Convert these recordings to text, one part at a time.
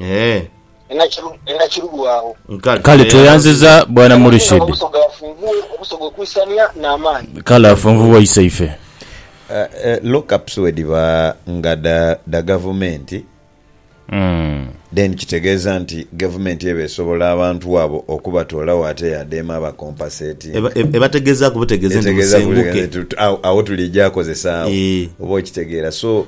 Eeh. Kale tweyanziza bwana Murishid. Kale afunvubwe iseife. Lock ups bwedhiba nga dha gavumenti then kitegeeza nti gavumenti eba esobola abantu abo okubatoolagho ate yadema aba compensatinga. Ebategeezaaku butegeeze nti musenguke. Agho tulija kozesa agho oba okitegeera so.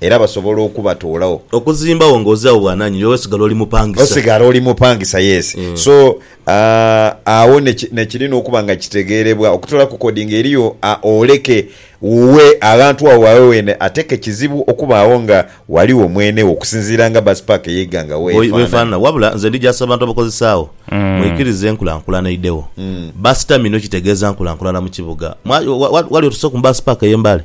era basobola okubatoolagho. Okuzimbagho nga ozirawo bwananyini era osigala oli mupangisa. Osigala oli mupangisa yes so agho nekirina okuba nga kitegeerebwa okutoola ku kodi nga eriyo oleke wuwe aghantu agho wawe weene ate ke kizibu okubaagho nga waliwo mwene wo okusinziira nga bus park eyeiga nga weefanana. Wabula nze ndijaasa abantu abakozesa agho mwikirize enkulankulana eidhewo. Bus terminal kitegeeza nkulankulana mu kibuga. Wali otuseeku mu bus park eye Mbale?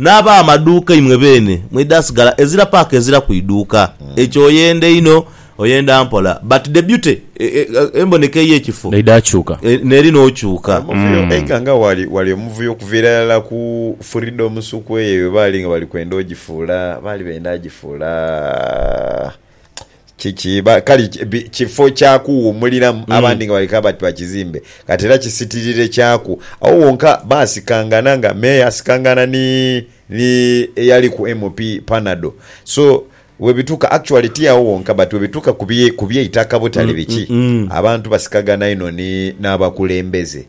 N'ab'amaduuka imwe beene mwidhasigala ezira paaka ezira ku iduuka. Ekyo oyenda einho, oyenda mpola, but the beauty, e, e, emboneka ey'ekifo, N'eidha kyuka. e, n'eri n'okyuka. Omuvuyo eika nga wali wali omuvuyo okuviira irala ku Freedom Sukwe eyo bwe baali nga bali kwenda ogifuula, baali benda agifuula, Kiki? Ba, kale ki- bi- kifo kya kuwuumuliramu, Mm. abandi nga bali kabati ba kizimbe, kati era kisitirire kyaku. Agho wonka baasikangana nga Meeya asikangana ni, ni eyali ku MP Panado. So, bwebituuka, actually ti agho wonka, but bwebituuka ku bye, ku by'eitaka butale biki, abantu basikagana inho ni, n'abakulembeze.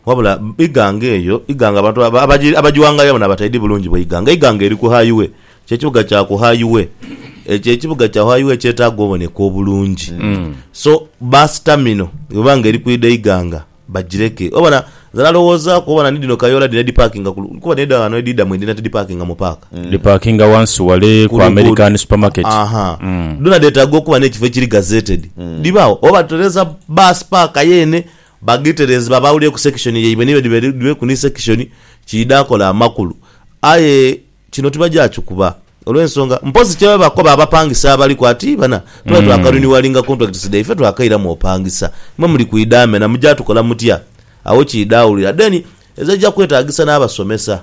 Wabula Iganga eyo, Iganga abantu abagiwangayo bona bataidhi bulungi bwa Iganga. Iganga eri ku High-way. Kyo ekibuga kya ku High-way. Ekyo ekibuga kya High-way kyetaaga oboneka obulungi. So, Bus Terminal bweba nga eri kwidha Iganga, bagireke. Obona, nze nalowoozaaku, obona ni dhino kayoola dhino edhipakinga ku, kuba dhino edho ghano edhiidha mu edhina tidhipakinga mu paaka. Dhipakinga ghansi ghale ku American Supermarket. Aha. Dhona dheetaaga okuba n'ekifo ekiri gazetted. Dhibagho. Oba tutereeza bus paaka yeene, Ba Giterenzi babaawulireku sekishoni yaibwe ni bedhibedhibweku ni sekishoni kiidha akola amakulu. Aye kino tibajakikuba olw'ensonga mpozi kye babakoba abapangisa abaliku ati bana tuba twakariniwalinga contracts dhaiffe ife twakairamu opangisa mwe muli kwidha mena mujja tukola mutya? Agho kiidha awulira. Then ezo eija kwetagisa n'abasomesa.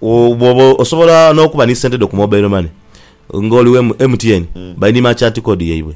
Bwoba osobola n'okuba ni sente dho ku mobile money ng'oli wa MTN, bali ni merchant code yaibwe.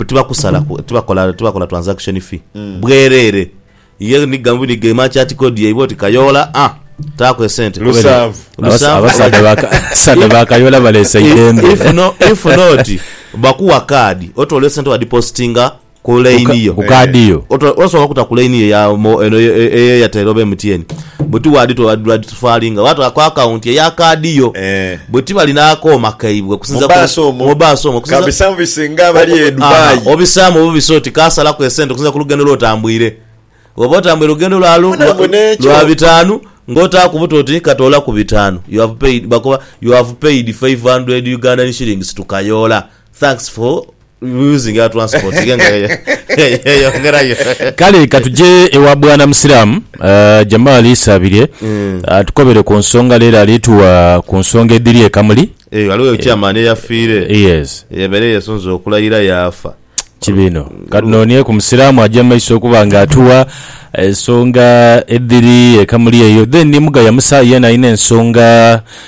Tibakusalaku, tibakola tibakola transaction fee. Bwereere. Ye ni ga ni ga merchant code yaibwe oti Kayoola aah taaku esente. Lusanvu. Abasa- abasaadha ba Ka- abasaadha ba Kayoola baleese eidembe. If no- if not, bakuwa kaadi, otoola esente wadepositinga Ku line yo. Ku kaadi yo. Oto osobola okuta ku line yo ya mo eno eye eye Airtel oba MTN. Bwe ti waadhi to waadhi lwadi tufalinga oba twa ku account eya kaadi yo. Eeh. Bwe ti bali n'akooma kaibwe okusinzira ku. Mu bus omwo. Mu bus omwo okusinzira. Ka bi servicinge abali e Dubai. Obisaamu obubisa oti kaasalaku esente okusinzira ku lugendo lw'otambwire. Bw'oba otambwire lugendo lwa lu Mbona mbu n'ekyo. lwa bitaanu ng'otaaku buta oti katoolaku bitaanu you have paid bakoba you have paid five hundred Ugandan shillings to Kayoola. Thanks for using our transport Kale katuje ewa bwana musiramu uh, Jamal Isabirye mm. atukobere ku nsonga lero alituwa ku nsonga edhiri ekamuli eyo eh, aliwo chairman eyafiire eh, yes yabere yesunze okulayira yafa kibino kati nonie ku musiramu aja maiso okuba nga atuwa ensonga edhiri ekamuli eyo then ni mugaya musa yena alina ensonga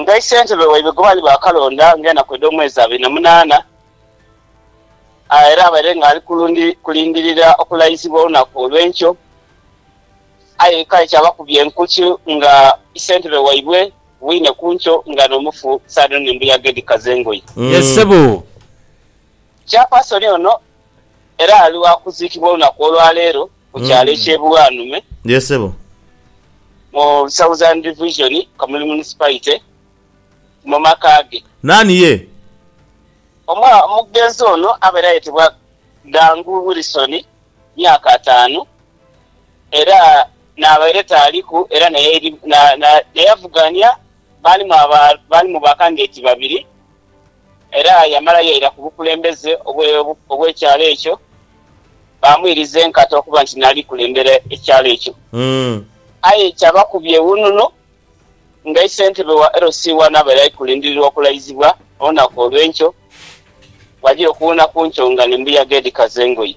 Nga isentebe waibwe gwe baali baakalonda ng'enaku edh'omwezi abiri na munaana, era abaire ng'ali kulindirira okulayizibwa olunaku olw'enkyo, aye kale kyabakubya enkuki nga isentebe waibwe bwine ku nkyo nga n'omufu saadha ono embuyaga edhikaza engoye. Yes sebo. Chairperson ono Era ali wa kuziikibwa olunaku olwa leero ku kyalo eky'e Bulwanume mu Southern Division, Kamuli Municipality, mu maka ge. Naani ye? Omugenzi ono abaire ayetebwa Gangu Wilson, myaka ataanu, era n'abaire taaliku era n'eyavugania baalimu ba kandideti babiri. Era yamala yaira ku bukulembeze obw'ekyalo ekyo, baamwiriza enkata okuba nti n'ali kulembera ekyalo ekyo. Aye kyabakubya ewununo nga isentebe wa LC I abaire ali kulindirirwa okulaizibwa olunaku olw'enkyo, bw'aja okuwuuna ku nkyo nga n'embuyaga edhikaza engoye.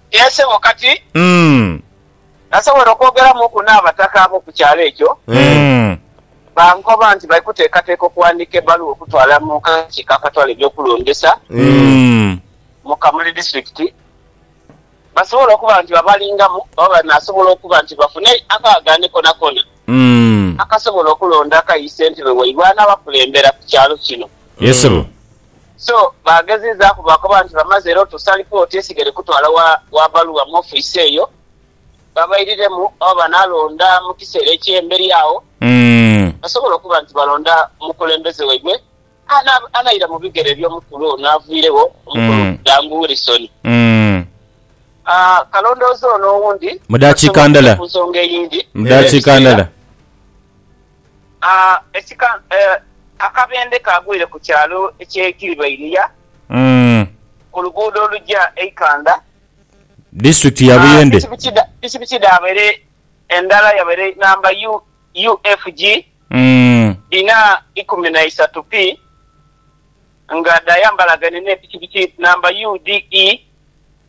Yee, sebo, kati Mm. nasobola okwogeramuuku n'abataka ab'oku kyalo ekyo. Mm. Bankoba nti bali kuteekateeka okuwandiika ebbaluwa okutwala mu kakiiko akatwala eby'okulondesa Mm. mu Kamuli Disiturikiti basobole okuba nti babalingamu oba banaasobola okuba nti bafune akaagaane konakoona Mm. akasobola okulonda akayi ssentebe waibwe anaabakulembera ku kyalo kino. Yee, sebo. So baagezezaaku baakoba nti bamaze era otuusa alipooti esigere kutwala wa baluwa mu ofiisi eyo babairiremu oba banaalonda mu kiseera eky'emberi agho basobole okuba nti balonda mukulembeze waibwe anaira mu bigere eby'omukulu ono aviiregho, Omukulu Dangu Wilson. Kalondoozi ono owundi basobole okugya ku nsonga eyindi era ebiseera. Akabendhe kaagwire ku kyalo eky'e Kiribeiria ku luguudo oluja e Ikanda, disitulikiti ya Buyende. Pikipiki dhaabaire endala yabaire namba UFG ina ikumi na isatu P nga dhaayambalagane n'epikipiki namba UDE.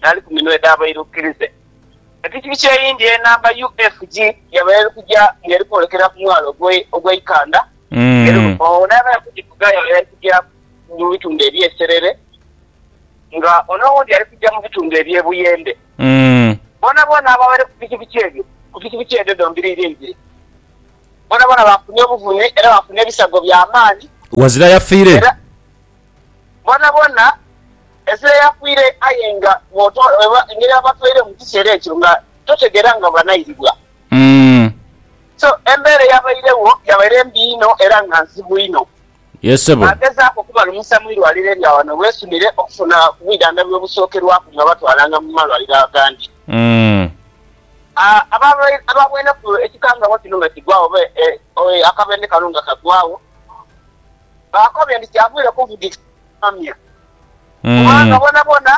n'ali ku minwe edh'abairukirize. Epikipiki eyindi enamba UFG yabaire eri kuja nga eri kwolekera ku mwalo ogw'eikandha era ono n'abaire ali kugivuga yabaire ali kuja mu bitundhu eby'e Serere nga ono owundi ali kuja mu bitundhu eby'e Buyende. Boonaboona ababaire ku pikipiki edho ku pikipiki edho dhombiri ibiri boonaboona baafunha obuvune era baafunha ebisago bya maani. Ghazira yafiire. Boonaboona ezira yafiire aye nga bw'otoolwa engeri abatwaire mu kiseera ekyo nga totegeera nga banairibwa. So embeera eyabairegho yabaire mbi inho era nga nzibu inho. Baagezaaku okubalumusa mu irwaliro erya ghano Rwesumire okufuna ku bwidhandhabi obusookerwaku nga batwalanga mu malwaliro agandi. Abaabaineku ekikangabwa kino nga kigwaagho oba akabenhe kano nga kagwaagho, baakobe nti kyavaire kuvugisa kubaamya, kubanga boonaboona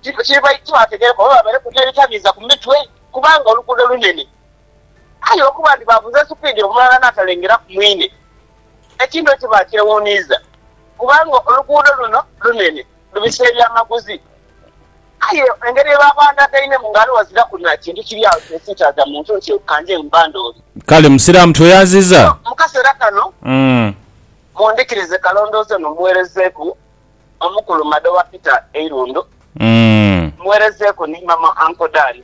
tibaategeereku oba baabaireku n'ebitabiiza ku mitwe kubanga oluguudo lunene. Aye okuba nti baavuze supiidi omulala n'atalengeraku mwine, ekintu ekyo baakyewuuniiza kubanga oluguudo luno lunene lubisa ebyamaguzi. Aye engeri yebabandagainemu nga ghaligho aziraku na kintu kiri agho kyesitaza muntu nti kanje mbandoole. Kale Musiraamu tweyanziza. So mu kaseera kano mundhikirize kalondooze ono mmuweerezeeku Omukulu Mada owa Peter Eirundo, mmuweerezeeku ni Mama Uncle Dan.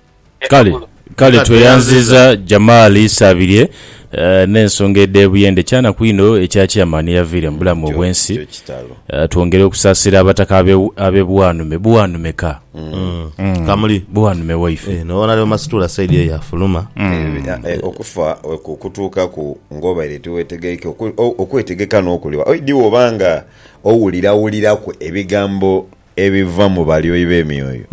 Kale, kale tweyanziza Jamal Isabirye n'ensonga edh'ebuyende. Kyanaku inho ekya Chairman eyaviire mu bulamu obw'ensi. Twongere okusaasira Abataka ab'e Bwanume. Bwanume ka. Kamuli. Bwanume waife. Eeh, n'obona Leo Masituula side eyo yafuluma. Okufa okukutuukaku ng'obaire tiweetegeike, okwetegeka n'okuliwa. Oidhi bw'oba nga owulirawuliraku ebigambo ebiva mu balyoyi b'emyoyo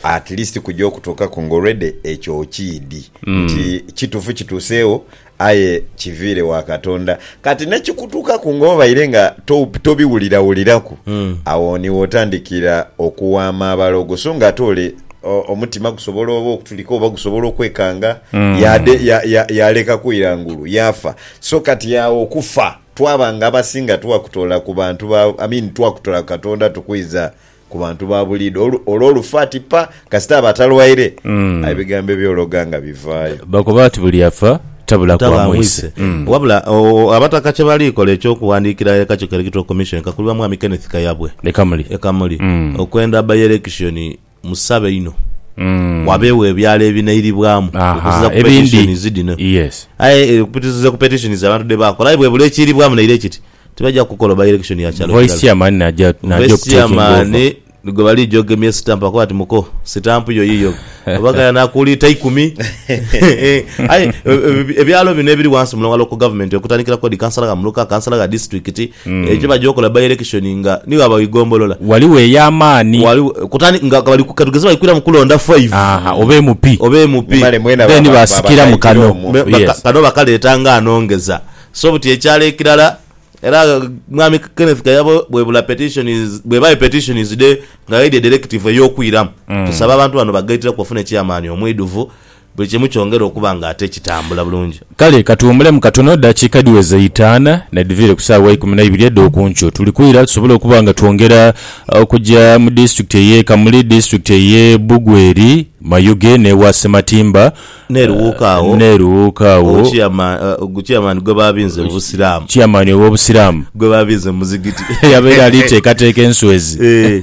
at least kuja okutuukaku nga already ekyo okiidhi nti kitufu kituuseegho aye kiviire wa Katonda kati nekikutuukaku nga obaire nga to- tobiwulirawuliraku awo niwo otandikira okuwaama abalogo so nga ate ole o- omutima gusobola oba okutulika oba gusobola okwekanga yade ya- ya- yalekaku irangulu yafa so kati awo okufa twaba nga abasinga twakutoola ku bantu ba, I mean twakutoola ku Katonda tukwiza ku bantu ba buliidho olu- olwo olufu ati pa kasita aba atalwaire aye ebigambo ebyologa nga bivaayo. Bakoba bati buli afa tabula Taba kwa mwise. amwise. Wabula o, abataka kye bali kola eky'okuwandiikira e Kakiiko Electoral Commission ekakulibwa Mwami Kenneth Kayabwe Leka muli. e Kamuli okwenda bba-yelekishoni Musabe inho wabeegho ebyalo ebinairibwamu okuzira ku petitions dhino. Aye okuzira ku petitions abantu dhe bakola aye bwebula ekiiribwamu naire kiti tibaja kukola by election ya kyalo kirala. Vice chairman naja okutekinga over. Vice chairman ni gwe baligya ogemye stamp akuwe ati muko stamp yo yiyo oba gayana akuuli ta ikumi aye ebyalo bino ebiri wansi mulongalo ku government okutandikira ku head councillor gha muluka, councillor gha district, Ekyo kye baja okola by-election nga ni bwaba igombolola. Ghaligho ey'amaani. Ghaligho, kutandika nga bali ku, katugeze bali kwiramu kulonda five. Aha, oba MP. Oba MP. Male mwena Then baba, baba basikira mu kano. kaitira omwo. Me, Yes. kano bakaleeta nga anongeza. So buti ekyalo ekirala, era Mwami Kenneth Kayabo bwebula petition is, bweba e petition is dhe, nga aidha edha elective ey'okwiramu, tusaba abantu bano bagaitiraku bafune chairman omwidhuvu, Buli kimu kyongera okuba nga ate kitambula bulungi. Kale ka tuwumulemu katono, dakiika dhiweze itaana nedhiviire ku saawa ya ikumi na ibiri edh'oku nkyo. Tuli kwira tusobole okuba nga twongera okuja mu disitulikiti ey'e Kamuli, disitulikiti ey'e Bugweri, Mayuge n'ewa Sematimba N'eruwuuka agho, n'eruwuuka agho. Obuchiyama, Guchiyamani gwe baabinze mu Busiraamu. Chiyamani ow'Obusiraamu. Gwe baabinze mu muzigiti. Yabaire ali teekateeka enswezi. Eeh.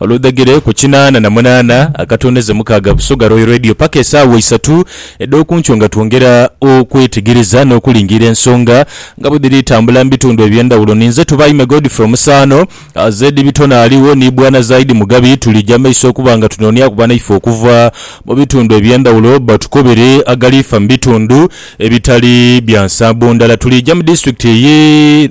Oludhegere ku kinaana na munaana akatondeze mukaaga Busoga Royal Radio paka esaawa isatu edh'okunkyo nga twongera okwetegereza n'okulingiira ensonga nga bwedhiri tambula mu bitundu eby'endhawulo. Ninze Tubaime Godfrey Omusaano, Zedi Bitone aligho ni Bwana Zaidi Mugabi. Tulija maiso okuba nga tunooniaku banaife okuva mu bitundu eby'endhawulo batukobere agaliifa mu bitundu ebitali bya nsambo ndala. Tulija mu disitulikiti eye.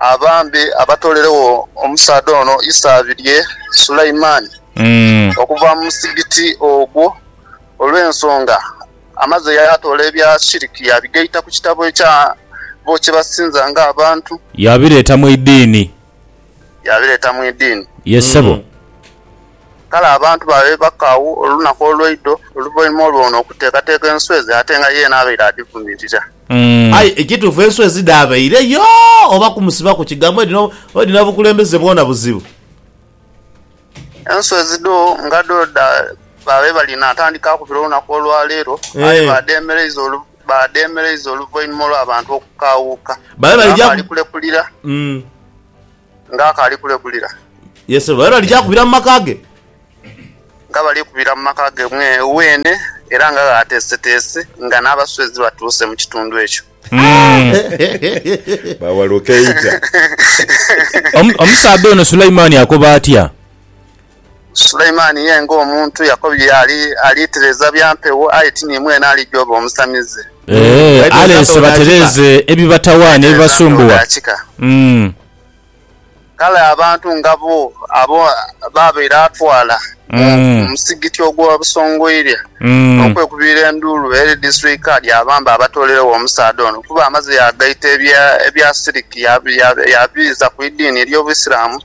abambe abatooleregho omusaadha ono isaabi lye Sulaimani okuva mu muzigiti ogwo, olw'ensonga amaze yaatoola ebya shiriki yaabigaita ku kitabo ekya bo kye basinza ng'abantu. Yaabireeta mu idiini. Yaabireeta mu idiini. Ye ssebo. Kale abantu baabe baka agho olunaku olweidho oluvainhuma olw'ono okuteekateeka enswezi ate nga yeena abaire adhivumirira. Aye ekituufu enswezi dhaabaire yo oba kumusibaku kigambo edhina edhina bukulembeze bwona buzibu. Enswezi dho nga dho dha baabe bali naatandika akubire olunaku olwaleero aye baadheemereiza olu baadheemereiza oluvainhuma olw'abantu okukaawuuka nga baali kulekulira. Nga akaali kulegulira. Ye sebo, era lija kubira mu maka ge. Nga bali kubira mu maka ge weene, era nga ghaateeseteese nga n'abaswezi batuuse mu kitundu ekyo. Bawaluka eita. Omusaadha ono Sulaimani akoba atya? Suleimani ye ng'omuntu yakobye ali alitereeza bya mpewo, aye ti ni mwene alija oba omusamize. Ee, aleese batereeze ebibatawaanya, ebibasumbuwa. Umm. Kale abantu nga bo abo baabaire atwala mu musigiti ogwa Busongoirya n'okwekubiira enduulu eri Disitulikiti Kaadi abambe abatooleregho omusaadha ono kuba amaze yaagaita ebya siriki yaabiiza ku idiini ery'Obuisiramu.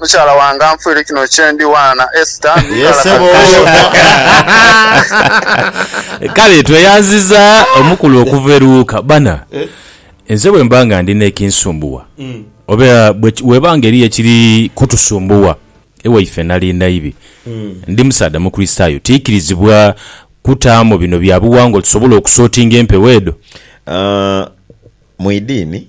Mukyala wange anfuire kino kyendi waana Esther ndi nkalakale. Kale tweyanziza omukulu okuva eruuka bana nze bwemba nga ndi nekinsumbuwa mm. oba weba nga eriyo ekiri kutusumbuwa ewaife nali naibi mm. ndi musaadha mukristayo tikirizibwa kutaamu bino byabuwangwa tusobole okusotinga empewo edo uh, mwidiini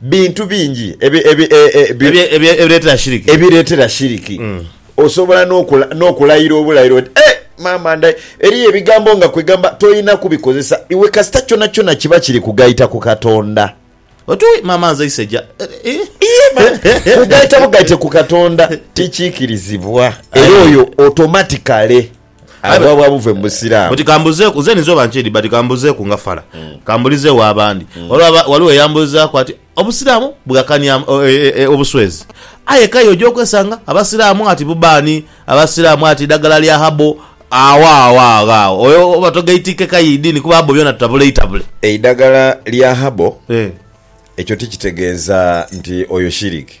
Bintu bingi ebireetera shiriki. Osobola n'okulayira obulayiro oti, Eh, maama ndha. Eriyo ebigambo nga kwegamba tolina kubikozesa iwe kasita kyonakyona kiba kiri kugaita ku Katonda. Oti, Wi, maama nze iseja. Iye maama. Kugaita bugaite ku Katonda tikiikirizibwa, era oyo otomatikale. Aye Aye- bwabwa buve mu busiraamu Buti kambuzeeku nze ninza oba nkyedi but kambuzeeku nga fala kambulizeewo abandi olwo aba- waliwo eyambulizaaku ati obusiraamu bugakania am- o- e- e- e- obuswezi aye kaye oja okwesanga abasiraamu ati bubaani abasiraamu ati dagala lya habo awo awo agho agho oyo oba togaitiike kaye idiini kuba habo byona tutabule itabule eidagala lya habo Eh. ekyo tikitegeeza nti oyo shiriki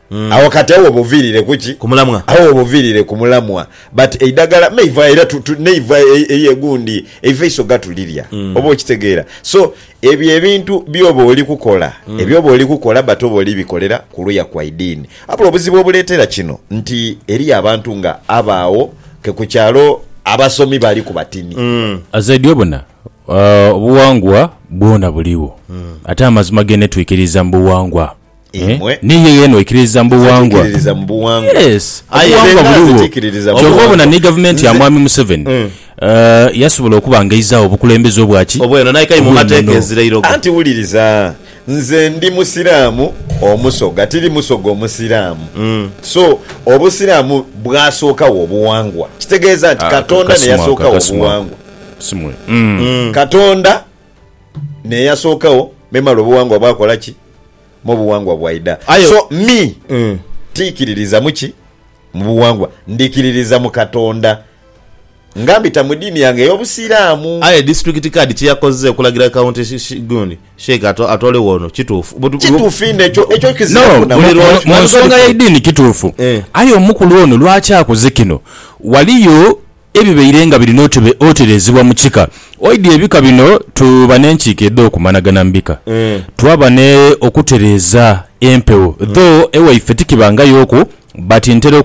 Awo kati awo obuviirire ku ki? Ku mulamwa. Awo obuviirire ku mulamwa. But eidagala meiva era tu, tu, neiva eri egundi, eiva eiso gatulirya. Oba okitegeera? So, ebyo ebintu by'oba oli kukola, eby'oba oli kukola but oba oli bikolera ku luya kwa idiini. Wabula obuzibu obuleetera kino nti eriyo abantu nga abo agho ke ku kyalo abasomi bali ku batini. Azaidi obona, obuwangwa bwona buligho. Ate amazima gene twikiriza mu buwangwa. Eh, imwe ni yo yona oikiririza mu buwangwa. Zetiikiririza mu buwangwa. Yes, Aye era obuwangwa era buligho. zetiikiririza mu Kyova obona buwangwa. ni gavumenti ya Nze- mwami Museveni eh, yasobola okuba nga eizaagho obukulembeze obwa ki? Obweno, naye kai mu Obw'enono. mateeka ezira irogo. Anti wuliriza, nze ndi Musiraamu Omusoga, tiri Musoga Omusiraamu. So, Obusiraamu bwasookawo obuwangwa. Kitegeeza nti Ah, Katonda ne kasimo ako, yasookawo kasimo ako. obuwangwa. Kasimo. Katonda neyasookagho memale obuwangwa bwakola ki mo obuwangwa bwaidha Aye- so me Mm. tikiririza muki mubuwangwa ndikiririza mu katonda nga mbita mu diini yange eyobusiramu Aye district card kyeyakoze okulagira county shi- shi- gundi sheik ato- atoolegho ono kituufu But- kituufu inho ekyo ekyo No, kizira mu- Buli lwa- kunaku. mu nsonga y'eidini kituufu Eh. aye omukulu ono lwaki akoze kino waliyo ebibaire nga birina otereezebwa mu kika. Oidhi ebika bino tuba n'enkiiko edh'okumanagana mu bika, twaba ne okutereeza empewo dho ewaife tikibangayooku but ntera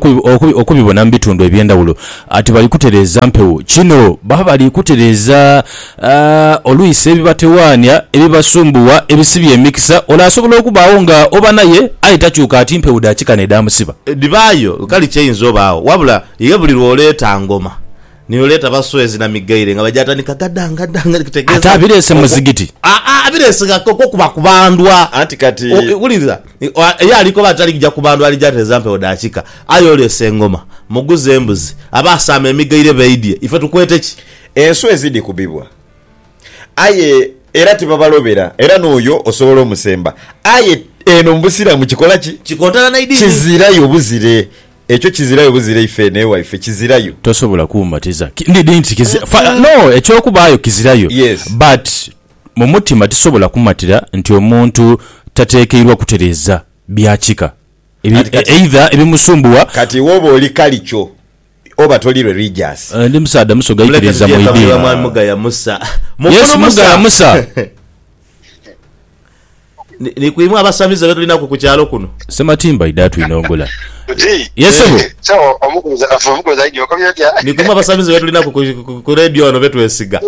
okubibona mu bitundu eby'endhawulo ati bali kutereeza mpewo. Kino baba bali kutereeza A Olwisa ebibatewaania, ebibasumbuwa, ebisibya emikisa, ono asobola okubaagho nga oba naye aye takyuka ati mpewo dha kika n'edhaamusiba. Dhibaayo kale kyainza obaagho wabula ye buli lw'oleeta ngoma ni oleeta baswezi na migaire nga baja tandika gada ngada ngada Ate kitegeeza abireese mu okwo muzigiti. Aa abireese nga ko okuba kubandwa Anti kati. O wuliriza ye ali koba ati alija kubandwa alija atereza mpewo dha kika aye oleese engoma, muguze embuzi, abaasaama emigaire baidhye ife tukwete ki? Enswa ezidhikubibwa, aye era tibabalobera, era n'oyo osobola omusemba. Aye eno mu Busiraamu kikola ki? Kikontana n'eidiini. Kizirayo buzire. Ekyo kizirayo buzire ife eno ewaife. Kizirayo. Tosobola kumbatiza. Ki, ndi, ndi nti kizi, fa, no, eky'okubaayo kizirayo. Yes. But, mu mutima tisobola kumatira nti omuntu tateekeirwa kutereeza bya kika, ebi, Kati, e, kati, either ebimusumbuwa. Kati iwe oba oli kalicho. Oba toli religious. Ndi musaadha musoga ikiriza mu idiini. Yes mugaya musa. Ni ku imwe abasamize be tulinaku ku kyalo kuno. Ssematimba idha twinongola. Yes ssebo. Ni ku imwe abasamize be tulinaku ku radio wano be twesiga.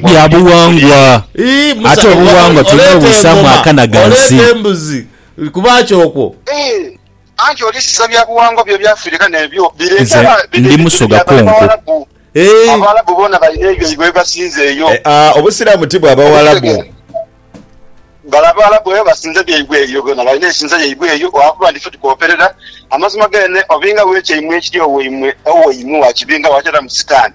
Bya buwangwa. Ate obuwangwa tulina obuisaamu akana ghansi. Oleeta embuzi kuba kyo okwo. Anti oli sisa bya buwangwa byo bya Afirika nebyo bireeta Nze ndi muso gakonko eeh. Abawalabu bona balina ebyaibwe byebasinza eyo. Eaa obusiramu ti bwa bawalabu. Bale abawalabu eyo basinza byaibwe eyo bona balina ensinza yaibwe eyo olwakuba nti fe tukoperera amazima gene obinga wekyaimwe ekiri owaimwe owaimwe wakibinga wateramu sitan.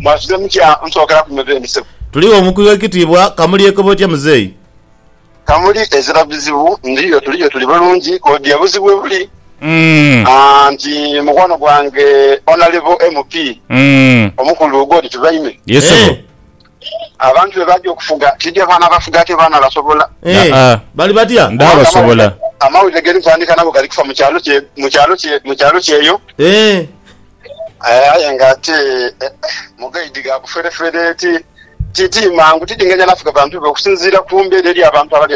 Mwasuze mutya musookera ku meza eno sebo? Tuligho mukulu w'ekitiibwa. Kamuli ekoba otya muzeeyi? Kamuli ezira bizibu. Ndiyo tuliyo tuli bulungi odia buzibu webuli. Anti mukwano gwange Onalebo MP omukulu God Tubaime. Ye sebo. Abantu be baja okufuga tidya baana bafuga ate baana basobola. Aa bali batya? Ndaba basobola. Amawulire ge ndi kutandika nago gali kufa mu kyalo kye mu kyalo kye mu kyalo kyeyo. Aye nga ate mugaidi gha buferefere ti ti mangu tidinganya na fuga bantu be okusinziira ku mbeera eri abantu abali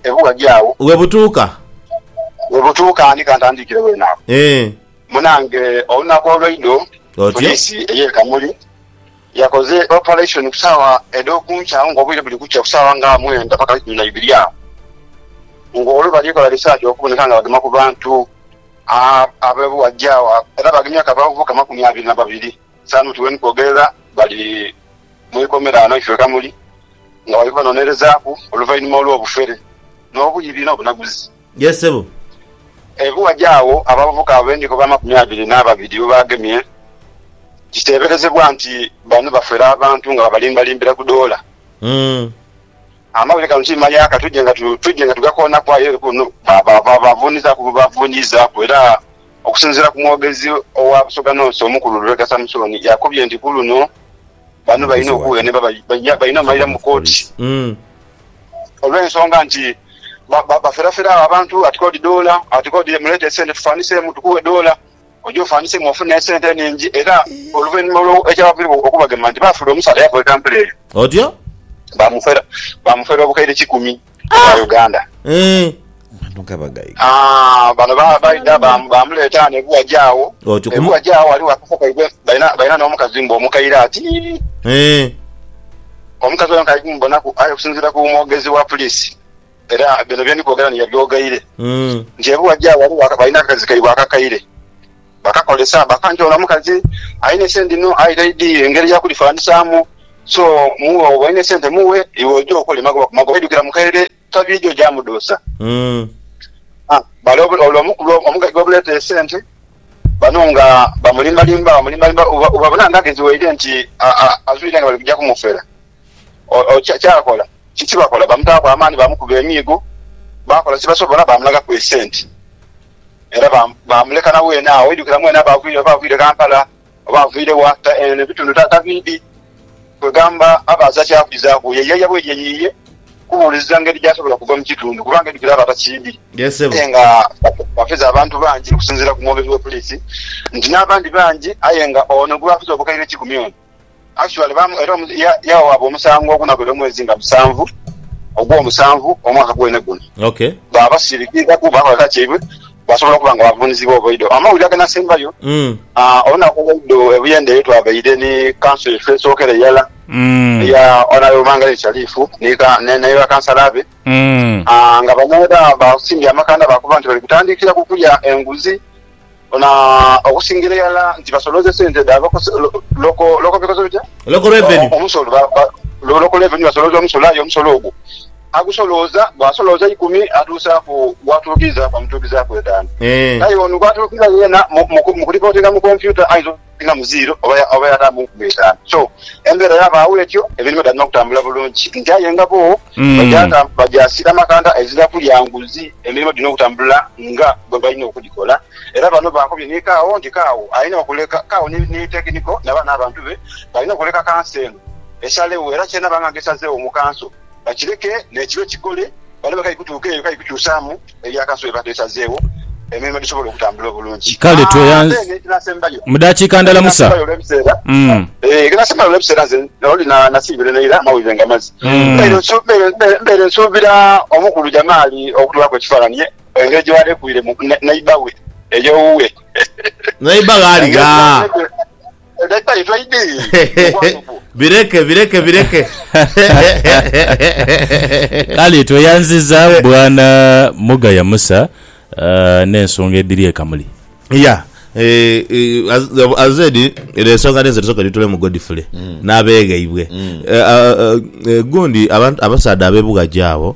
ebughadhi agho. We butuuka. We butuuka ni ka ntandiikire weene agho. Munange olunaku olweidho poliisi ey'e Kamuli yakoze operation ku saawa edh'oku nkya agho nga obwire buli kukya ku saawa nga mwenda paka ikumi na ibiri agho nga olwo bali kola research okuboneka nga bagema ku bantu. Abe bwajja agho era bagemye akabavu kamakumi abiri na babiri. Saanu ti weni kwogerera bali mu ikomera ghano ife ghamuli, nga bali kubanonerezaaku oluvainhuma olw'obufere, n'obuibi, n'obunaguzi. Ye ssebo. Abe bwajja agho abavubuka abo be ndikoba amakumi abiri n'ababiri bwe bagemye, kiteeberezebwa nti bano bafera abantu nga babalimbalimbira ku doola. Amawulire gano ti maya ka twidhe nga tugakoonaku aye eri kuno baavunizaaku era okusinziira ku mwogezi owa Busoga North omukulu Lubega Samusoni yakubye nti ku luno bano balina okuwenebwa balina omalira mu kooti olw'ensonga nti baferafera agho abantu ati k'odi doola ati k'odi muleete esente tufaaniseemu tukuwe doola oje ofanhisemu ofune esente enhingi era oluvainhuma olwo ekyabaviragho okubagema nti baafula omusaadha eyakola etampula eyo. Otyo. Baamufera, baamufera obukaire kikumi obwa Uganda. Eeh. Abantu nga bagaiga. Aah, bano ba, baidha ba, baamuleeta ghano e Buwaje agho. Otyo. E Kumu. Buwaje agho ghaligho akafo kaibwe, balina, balina n'omukazi mbu omukaire ati. Eeh. Omukazi oyo nkaidhi mubonaku, aye okusinziira ku mwogezi wa puliisi. Era bino bye ndi kwogera ni yabyogaire nti ebuwa gya wali balina akakazi kaibwe akakaire bakakolesa baka nti ono omukazi alina esente inho aye taidhi ngeri ya kulifananisamu so mughe oba olina esente mughe iwe oje okole magoba ku magoba aidhukira mu kaire tabidhi oja mudhusa bale ole omukulu omugaiga obuleeta esente bano nga bamulimbalimba bamulimbalimba bwebabona nga agezi waire nti azwire nga bali kuja kumufera Kyakola ki? Tibakola. Bamutaaku amaani, baamukuba emiigo, baakola kye basobola, baamulagaku esente era baamuleka na weene agho. Oidhukira mwene aba avaire, oba avaire Kampala oba avaire wa, eno ebitundu tabiidhi. Kwegamba aba aza kya kwizaaku ye yaaya bweeri eyo yiye kubuuliriza ngeri gy'asobola okuva mu kitundu kubanga oidhukira aba atakiidhi. Aye nga bafeze abantu bangi okusinziira ku mwogezi wa poliisi nti n'abandi bangi aye nga ono gwe bafeze obukaire kikumi ono Actually baamu era omu, ya, yawawaabwa omusango ogunaghera omwezi nga musanvu ogw'omusanvu omwaka gwene guno. Ok. Ba basirikiizaku, baakola kyaibwe, baasobola okuba nga baavuunizibwa obuidho. Amawulire aganaasembayo, Mm. ah, olunaku olweidho e Buyende ye twabaire ni kanso yaife esookera irala, Mm. eya Honourable Mangaleni Shalifu ni ka, ne, ne bakansala be, Mm. ah, nga bano era baasimbye amakanda baakoba nti bali kutandiikira ku kulya enguzi. Bona okusingira irala nti basolooze sente dha Local Revenue, basolooza omusolo aye omusolo ogwo agusolooza bwasolooza eikumi atuusaaku gwatuukizaaku amutuukizaaku etaanu aye ono gwatuukiza yeena mu kulipootinga mu kompyuta ayinza. Nga mu ziiro oba yata mu nkumi itaanu. So, embeera yabaagho etyo, emirimo dhaalina okutambula bulungi. Nti aye nga bbo bagya siira makanda, ezira kulya nguzi, emirimo dhirina okutambula nga bwe balina okudhikola. Era bano baakobye ni Kawo nti Kawo alina okuleka, Kawo ni Tekiniko naba n'abantu be balina okuleka kanso eno esalegho era ky'enaabanga nga esazeegho mu kanso bakireke n'ekibe kikole, baleme kai kutuuka eyo kai kukyusaamu. erya Kanso bweba twesazeewo emirimo gisobole okutambula obulungi. Kale tweyanze. Ate n'ekinasembayo. Mu dakiika ndala Musa. Ekinasembayo olw'ebiseera. Mm. Eh, ekinasembayo olw'ebiseera nze oli na nasiibira eno ira amawulire nga mazi. Mm. Mbeire nsu- mbeire- mbeire- mbeire nsuubira omukulu Jamaali okutulaku ekifaananyi ye engeri gye baalekwiiremu ne- neighbour we ey'owuwe. Neighbour ghaali Engeri gye ghaa? baalekwi- Leta ife idi mukwano gwo. Bireke bireke bireke. Kale tweyanziza bwana Mugaya Musa n'ensonga edhiri ekamuli. Yeah eeh as said eno ensonga ninze tusoke tutulemu Godfrey n'abeghaibwe. Eeh gundi abasaadha abebughaji abo.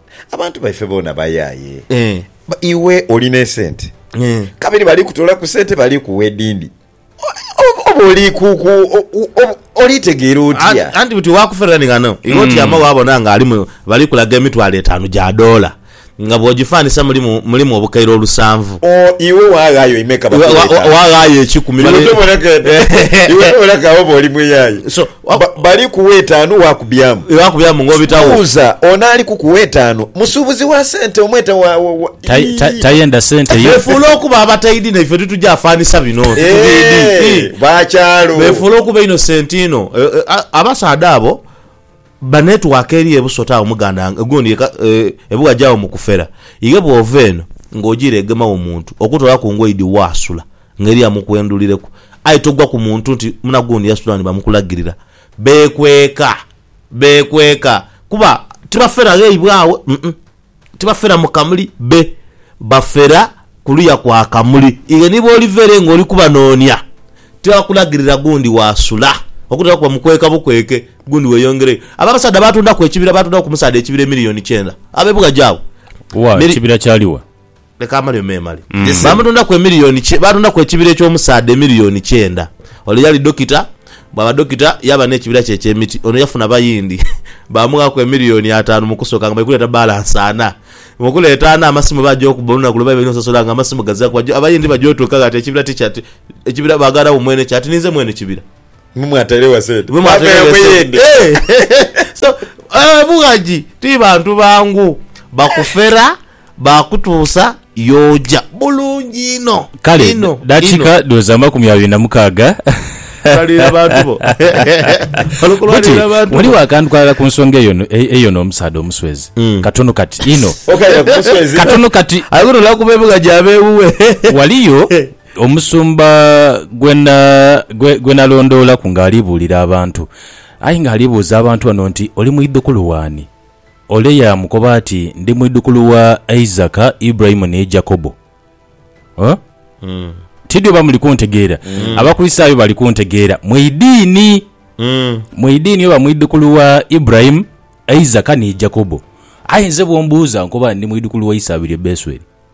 Abantu baife boona bayaye. Iwe oli n'esente kabiri bali kutoolaku sente bali kuwa edindi. Oba oli kuku oli tegeera otya? Anti buti waakufera ni ghano iwe otyama waabona nga alimu bali kulaga emitwalo etaanu gya doola nga bw'ogifaanisa mulimu mulimu obukaire olusanvu. O, iwe waaghaayo imeka? Bakuwe etaanu. Waaghaayo ekikumi. Iwe tobona ka, iwe tobona ka oba oli muyaye? Bali kuwa etaanu waakubyamu. Kibuuza, On'ali kukuwa etaanu musuubuzi wa sente omwete wa, wa, ii. Tayenda sente ye. Beefuula okuba abataidhi na ife titugya afanisa bino nti tubiidhi. Eeh, Ii. ba kyalo. Beefuula okuba innocent inho. Abasaadha abo ba network eri e Busota agho muganda gundi yeka e Buwaje agho mu kufera. Ighe bw'ova eno ng'ojiira egema wo muntu, okutoolaku ngoidi waasula. Ngeri ya mukwendulireku. Aye togwa ku muntu nti munagundi yasitula ni bamukulagirira. Beekweka. Beekweka. Kuba tibafera ghaibwe agho. Uh-uh. Tibafera mu kamuli. Be. Bafera kuluya kwa kamuli. Iwe ni bw'oliva ere nga oli kubanoonia, tibakulagirira gundi waasula. Okutera kuba mukweka bukweke, gundi weeyongereyo. Abo abasaadha baatondaku ekibira, baatondaku ku musaadha ekibira emiliyoni kyenda. Ab'e Bughaji abo. Wa, Mili. ekibira kyali wa? Leka amalyo memale. Baamutundaku emiliyoni kye, baatundaku ekibira eky'omusaadha emiliyoni kyenda. Ole yali dokita, bwaba dokita yaaba n'ekibira kye eky'emiti. Ono yafuna bayindi, baamughaku emiliyoni ataanu mu kusooka nga bali kuleeta balansi ana. Mu kuleeta ana, amasimu baaja okuba olunaku lwe baidha okusasula nga amasimu gazilaku. Abayindi baja otuuka ghati ekibira tikya, ekibira baaghanagho mwene kyo ati ninze mwene kibira. Mwe mwatairegho sente. Mwe mwatairegho sente. So, eeh Mughagi ti bantu bangu. Bakufera, baakutuusa y'oja. Bulungi inho. Kale, Inho. dakika Inho. dhoza amakumi abiri na mukaaga. Kulalira bantu bo. Wano Buti, kulalira bantu bo. waliwo akantu kalala ku nsonga eyo no- e- eyo n'omusaadha omuswezi. Katono kati inho. Okaira ku muswezi. Katono kati Aye guno olwa kuba ebuga gyaba ewuwe. waliyo Omusumba gwe nalondoolaku ng'ali buulira abantu. Aye ng'ali buuza abantu bano nti, Oli mwidhukulu w'ani? Ole yaamukoba ati, Ndi mwidhukulu wa Isaka, Iburahimu ni Jakobo. Oh? Tidhi oba muli kuntegeera. Abakristaayo bali kuntegeera. Mu idiini. Mu idiini oba mwidhukulu wa Iburahimu, Isaka ni Jakobo. Aye nze bw'ombuuza nkoba ndi mwidhukulu wa Isaabirye Besweri.